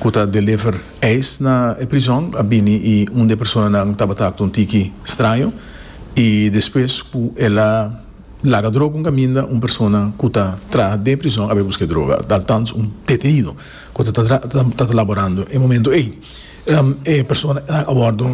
ku ta deliver ijs na e prizòn a bini i un di e personanan tabata aktua un tiki straño i despues ku el a laga droga un kaminda un persona ku ta traha den prizòn a bai buska e droga altans un detenido ku ta tabata laborando e momento ei e personanan a wòrdu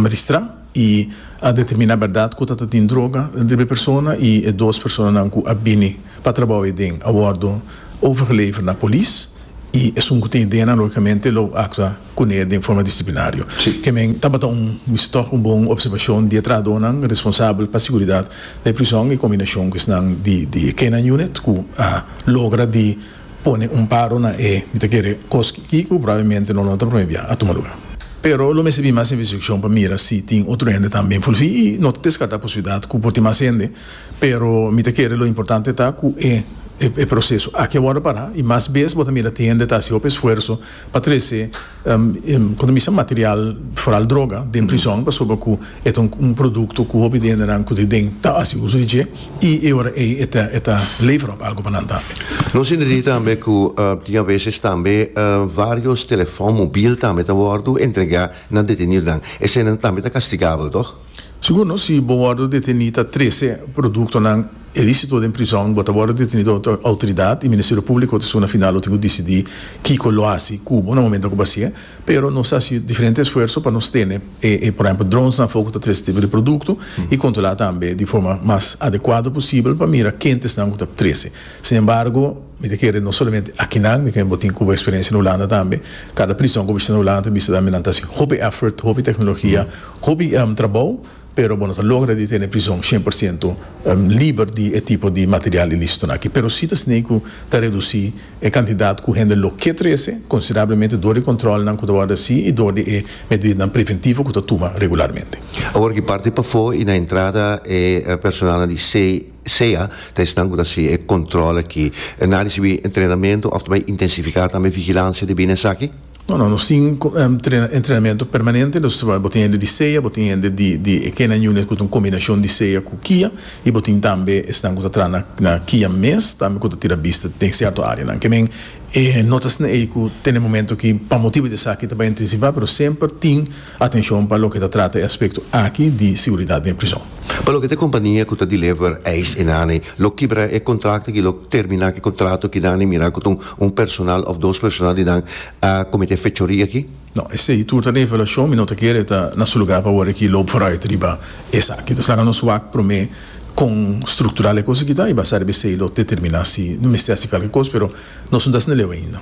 ristrá i a determiná bèrdat ku ta ta tin droga riba e persona i e dos personanan ku a bini pa trabou ei den a wòrdu overgeleverd na polis. y esun cu tin e DNA logicamente lo actua cune den forma disciplinario. Kemen tabata un wisitoch un bon observacion di e trahadonan responsabel pa siguridad na e prison y combinacion cu esnan di e K-9 Unit cu a logra di pone un paro na e mi ta kere cos aki cu probablemente no lo ta prome bia a tuma lugar. Pero lo mester bin mas investigacion pa mira si tin otro hende tambe envolvi y no ta descarta posibilidad cu por tin mas hende. Pero mi ta kere lo importante ta ku e e proseso aki a wòrdu pará i mas bes bo ta mira ti hende ta hasi hopi esfuerso pa trese kon ta bisa material foral droga den prizòn pasobra ku e ta un produkto ku hopi di hendenan ku ta den ta hasi uso di dje i e ora ei e ta e ta lever òf algu pa nan tambe. Nos hinda di tambe ku tin aveses tambe vários telefòn mobil tambe ta wòrdu entregá na detenidonan. Eseinan tambe ta kastigabel, tòg? Segundo, si bo wordo deteni ta trece productonan ilicito den prizon, bo ta wordo deteni dor otro autoridad y Ministerio Publico ta suna final lo tin cu dicidi kico lo haci cubo na momento cu bo haci'e. Pero nos ta haci diferente esfuerzo pa nos tene e, por ehemplo, dronesnan afo cu ta trece tipo di producto y controla tambe di forma mas adecuado posibel pa mira kentesnan cu ta trece. Sin embargo. Mi ta kere no solamente akinan, mi ta kere bo tin Cuba experiencia na Hulanda tambe, cada prison cu bo bishita na Hulanda ta bishita tambe nan ta haci hopi effort, hopi tecnologia, hopi trabou pero bo no ta logra di tene prison cien por ciento liber di e tipo di material ilícito nan aki, pero si ta sneei cu ta reduci e cantidad cu hende lo ke trece considerablemente door di controlnan cu ta worde haci y door di e medidanan preventivo cu ta tuma regularmente. Awor aki parti pafo y na entrada e personalnan di C. Sea ta esnan ku ta hasi e kòntròl aki, nan a risibí entrenamentu òf ta bai intensifiká tambe vigilansia di bini esaki? No, no. Nos tin entrenamentu permanente. Dus bo tin hende di sea, bo tin hende di e K-9 unit ku ta un kombinashon di sea ku kia, i bo tin tambe esnan ku ta traha na kia mes tambe ku ta tira bista den sierto áreanan. Kimin e notasnan ei ku tene momentu ki pa motibu di esaki ta bai intensifá, pero semper tin. Atenshon pa loke ta trata e aspekto aki di siguridat den prison. Pa loke ta e kompania ku ta deliver ijs enaney, lo kibra e kontrakto aki, lo terminá ku e kontrato ku naney mirá ku ta un personal òf dos personal di nan a kometé fechoria aki. No, esei tur ta na evaluashon, mi no ta kere ta na su lugá pa wòrdu aki loop vooruit riba esaki. Nos laga nos wak promé kon struktural e kos aki ta i basá riba esei lo determiná si no mester hasi kalke kos, pero nos no ta asina leu ainda.